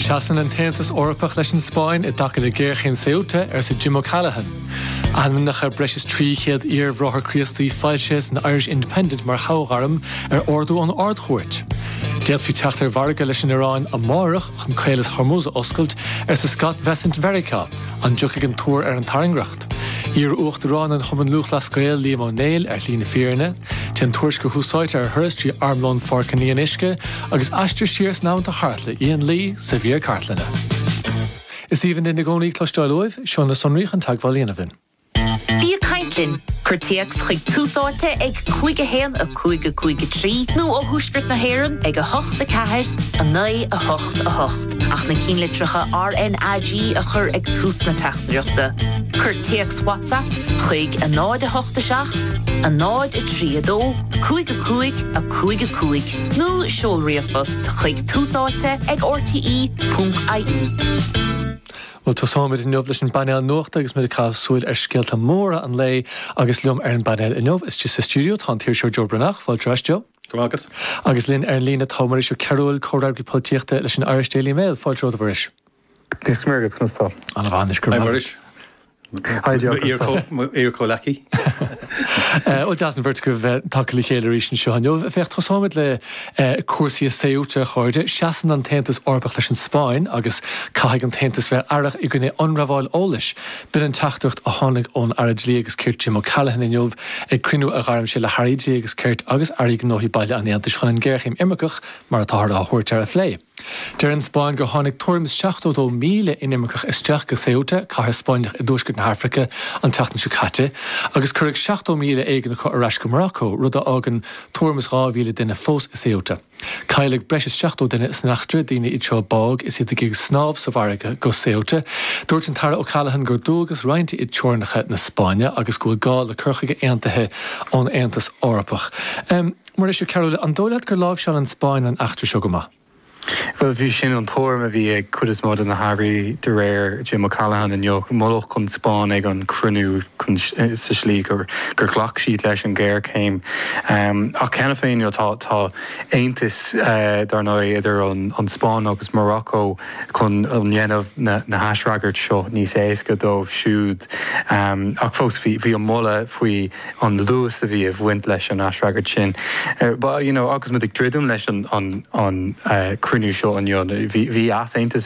Seasann an tAontas Eorpach leis an Spáinn i dtaca le géarchéim Ceuta, arsa Jim O'Callaghan. Ainmneacha breis is 300 iar-bhráthair Críostaí foilsithe san Irish Independent mar thoghairm ar ordú ón Ard-Chúirt. D'fhéadfaí teacht ar mhargadh leis an Iaráin amárach chun caolas Hormuz a oscailt, arsa Scott Bessent Mheiriceá. An dtiocfaidh an tuar ar an tairngreacht? Iar-Uachtarán an Chumann Lúthchleas Gael Liam Ó Néill ar shlí na fírinne. Téann tuairisceoir Thús Áite ar thuras trí Armlón Pháirc an Fhionnuisce agus aistear siar san am atá thart le Ian Lee sa mhír cartlainne. Is aoibhinn linn i gcónaí cloisteáil uaibh, seo na sonraí chun teagmháil a dhéanamh linn. Bí ag caint linn! Cuir téacs chuig Tús Áite ag 51 5 5 3 nó ó Thuaisceart na hÉireann ag 8 4 9 8 8. Ach na cinnlitreacha RNAG a chur ag tús na teachtaireachta, cuir téacs WhatsApp chuig 087 032 55 55 nó seol ríomhphost chuig túsáite ag rte.ie. Bhuel, tosóimid inniu leis an bpainéal nuachta agus muid ag caitheamh súil ar scéalta móra an lae agus liom ar an bpainéal inniu. Istigh sa stiúideo tá an t-iriseoir Joe Breathnach. Fáilte romhat Joe. Go raibh maith agat. Agus linn ar an líne tá Muiris Ó Cearbhaill, Comhfhreagraí Polaitíochta leis an Irish Daily Mail. Fáilte romhat, a Mhuiris. Dia is Muire duit, conas tá? Ana mhaith anois, go raibh maith agat. Hi Muiris, mo iar-chomhleacaí. Bhuel, deas an bheirt agaibh bheith tagtha le chéile arís anseo inniu. Féach, tosóimid le cúrsaí i Ceuta, a chairde. Seasann an tAontas Eorpach leis an Spáinn agus caithfidh an tAontas bheith aireach i gcoinne ionramháil eolais. B'in an teachtaireacht a tháinig ón Aire Dlí agus Cirt Jim O'Callaghan inniu ag cruinniú a ghairm sé le hAirí Dlí agus Cirt agus Airí Gnóthaí Baile an Aontais chun an géarchéim imirceach, mar atáthar á thabhairt air, a phlé. Deir an Spáinn gur tháinig tuairim is 72,000 inimirceach isteach go Ceuta, cathair Spáinneach i dtuaisceart na hAfraice, an tseachtain seo caite agus cuireadh 70,000 éigin acu ar ais go Maracó, rud a fhágann tuairim is 2,000 duine fós i Ceuta. Cailleadh breis is 70 duine san eachtra, daoine iad seo a bádh is iad ag snámh sa bhfarraige go Ceuta. Dúirt an tAire O'Callaghan gur dualgas roinnte iad teorainneacha na Spáinne agus go bhfuil gá le cur chuige aontaithe ón Aontas Eorpach. Muiris Ó Cearbhaill, an dóigh leat gur láimhseáil an Spáinn an eachtra seo go maith? Bhuel, b'shin an tuairim a bhí ag cuid is mó de na hairí de réir Jim O'Callaghan inniu. Moladh an Spáinn ag an chruinniú sa tslí gur. gur ghlac siad leis an ghéarchéim ach cheana féin tá aontas, dar ndóigh, idir an Spáinn agus Morocco chun dhéanamh na haisfhreagairt seo níos éasca dóibh siúd ach fós bhí an moladh faoi an luas a bhí ag bhaint leis an aisfhreagairt sin. Agus muid ag druidim leis an cruinniú seo inniu, bhí easaontas